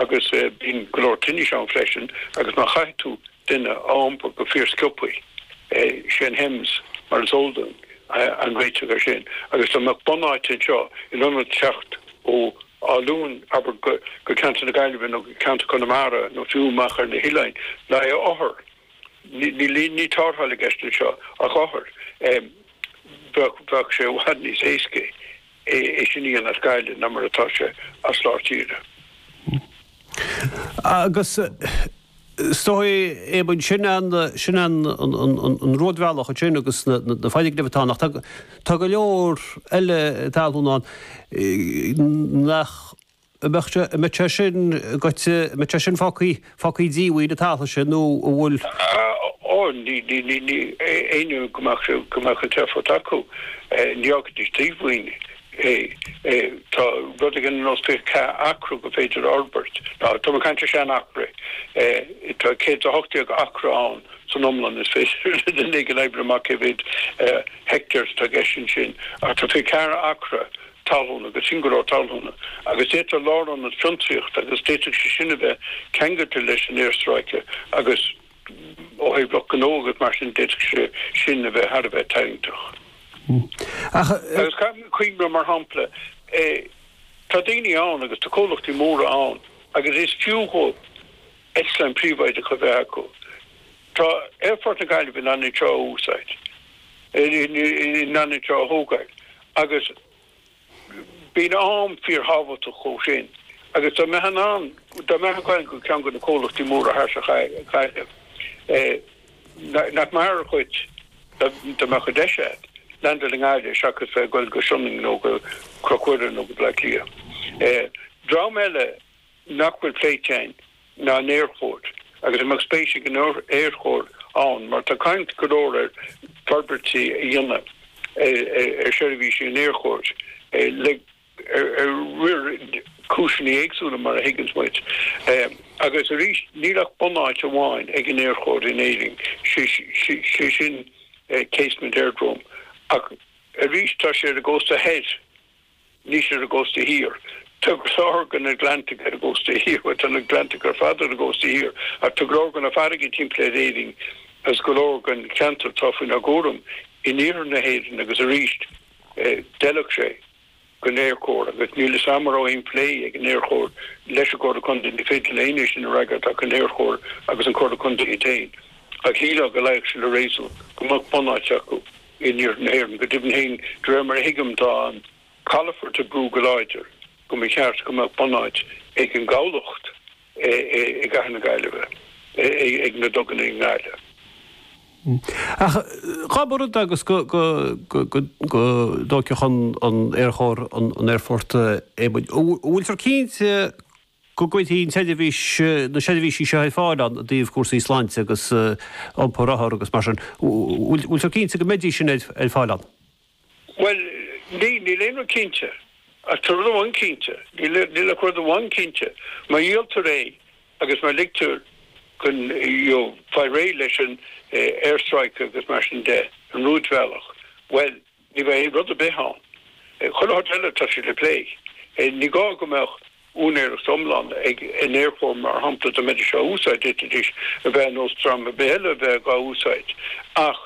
Agus bíonn go leor tinnis ann freisin agus má chaithfidh tú duine a iompar go fíorsciobtha, sé an HEMS mar is eol dúinn an réiteach air sin. Agus dá mbeadh bunáit anseo in ionad teacht ó Áth Luain abair go ceantar na Gaillimhe nó go ceantar Conamara nó fiú amach ar na hoileáin, le haghaidh othar, ní tarrtháil i gceist anseo ach othar, bheadh sé i bhfad níos éasca. é sin a dhéanamh as Gaillimh ná mar atá sé as lár tíre. Agus is dóigh, Éamonn, sin an, sin an, an, an, an, an rúidbhealach ansin agus na, na, na foirgnimh atá ann, ach. Tá, tá go leor eile talún ann nach, mbeadh sé, mbeadh sé sin goitse, mbeadh sé sin fágthaí, fágthaí díomhaoin an t-am sin nó an bhfuil. Ó, ní, ní, ní, ní, éinne go mbeadh, go mbeadh an t-éifeacht acu, ní fhágfaidís díomhaoin é. Tá rud éigin ar nós fiche ceathair acra gur féidir a fhorbairt, now tá mé ag caint ar sean acra, tá céad is a hocht déag acra ann san iomlán is féidir le duine éigin oibriú amach cé mhéad heictéar atá i gceist ansin ach tá fiche ceathair acra talúna, agus sin go leor talúna, agus d'fhéadfadh lárionad fiontraíochta, agus d'fhéadfadh sé sin a bheith ceangailte leis an aerstráice, agus ó thaobh lucht gnó agus mar sin, d'fhéadfadh sé sin a bheith thar a bheith tarraingteach. Agus caithfidh mé cuimhneamh, mar shampla, tá daoine ann agus tá comhlachtaí móra ann agus is fiú dhóibh eitleáin príobháideacha a bheith acu. Tá Aerfort na Gaillimhe in ann iad seo a úsáid, in ann iad seo a thógáil agus bíonn am fíorthábhachtach dhóibh sin agus dá mbeadh in ann, dá mbeadh ag goil go ceann go na comhlachtaí móra thart ar Ghaillimh nach maith ar chuid dá mbeadh an deis agat leaindeáil i nGaillimh seachas bheith ag goil go Sionainn nó go Cnoc Mhuire nó go Bleá Cliath. Dream eile. nach bhfuil pléite againn ná an Aerchór agus a mbeadh spéis ag an Aerchór ann mar tá caint go leor ar forbairtí a dhéanamh ar seirbhísí an Aerchóir le cúiseanna éagsúla mar a thuigeanns muid agus arís níl ach bunáit amháin ag an Aerchór in Éirinn, sé sin Casement Aerodrome ach arís tá sé ar an gcósta thoir. Níl sé ar an gcósta thiar. Tá go leor den Atlantach ar an gcósta thiar. Bhuel, tá an tAtlantach ar fad ar an gcósta thiar, ach tá go leor go na farraigí timpeall ar Éirinn agus go leor den cheantar atá faoinár gcúram in iarthar na hÉireann agus arís, d'fheilfeadh sé don Aerchór agus níl 'fhios a'm a' raibh aon phlé ag an Aerchór leis an gComhairle Contae, ní féidir le éinne é sin a fhreagairt ach an Aerchór agus an Comhairle Contae iad féin, ach shílfeá go luífeadh sé le réasún go mbeadh bunáit acu. In Iarthar na hÉireann, go deimhin féin, de réir mar a thuigim, tá an calafort ag brú go láidir go mba cheart go mbeadh bunáit ag an gcabhlach i gcathair na Gaillimhe, ag na duganna i nGaillimh. Ach cá bhfios agus go dtóigfeadh an tAerchór an aerfort. An bhfuiltear cinnte? go gcuirfidh an tSeirbhís na seirbhísí seo ar fáil ó thaobh cúrsaí sláinte agus iompar othar agus mar sin. Bhfuiltear cinnte go mbeidís sin ar fáil ann? Bhuel, níl aon rud cinnte. Ach tá rud amháin cinnte, níl ach rud amháin cinnte, má dhíoltar é agus má ligtear dhóibh, you know, fáil réidh leis an aerstráice agus mar sin de, an rúidbhealach, bhuel, Ní bheidh aon rud ar bith ann. Chuile shórt eile tá sé le plé. Ní gá go mbeadh úinéireacht iomlán ag an Aerchór mar shampla dá mbeidís á úsáid, d'fhéadfaidís a bheith ar nós dream ar bith eile a bheith dhá úsáid ach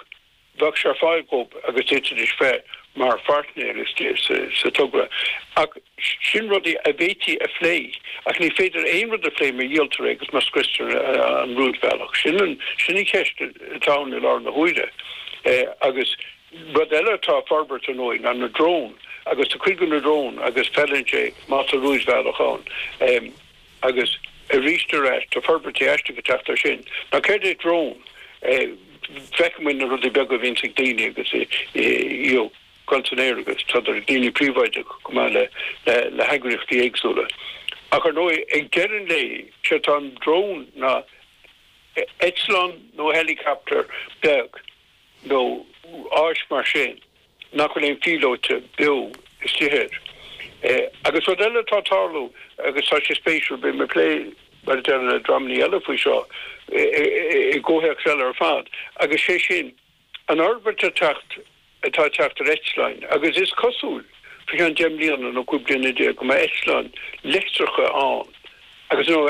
bheadh sé ar fáil dhób agus d'fhéadfaidís bheith mar phairtnéir istigh sa togra. Ach sin rudaí a bhféadfaí a phlé. Ach ní féidir aon rud a phlé má dhíoltar é agus má scriostar an rúidbhealach. Sin an cheist atá ann i láthair na huaire agus. Rud eile atá ag forbairt ar ndóigh ná na dróin agus tá cuid de na dróin agus feileann sé má tá rúidbhealach ann. Agus arís ar ais tá forbairtí aisteach ag teacht air sin. Ná céard é drón? Feiceann muid na rudaí beaga a bhíonns ag daoine agus iad ag dul san aer agus tá idir daoine príobháideacha chomh maith le heagraíochtaí éagsúla. Ach ar ndóigh ag deireadh an lae sé atá i ndrón ná eitleán nó helicopter beag. nó áis mar sin nach bhfuil aon phílóite beo istigh air. Agus rud eile atá ag tarlú, agus tá sé spéisiúil, beidh mé ag plé, mar a deirim, le dreamannaí eile faoi seo i gcomhthéacs eile ar fad, agus sé sin an fhorbairt atá ag teacht, atá ag teacht ar eitleáin. Agus is cosúil, faoi cheann deich mbliana nó cúig bliana déag, go mbeidh eitleáin leictreacha ann, agus, nó,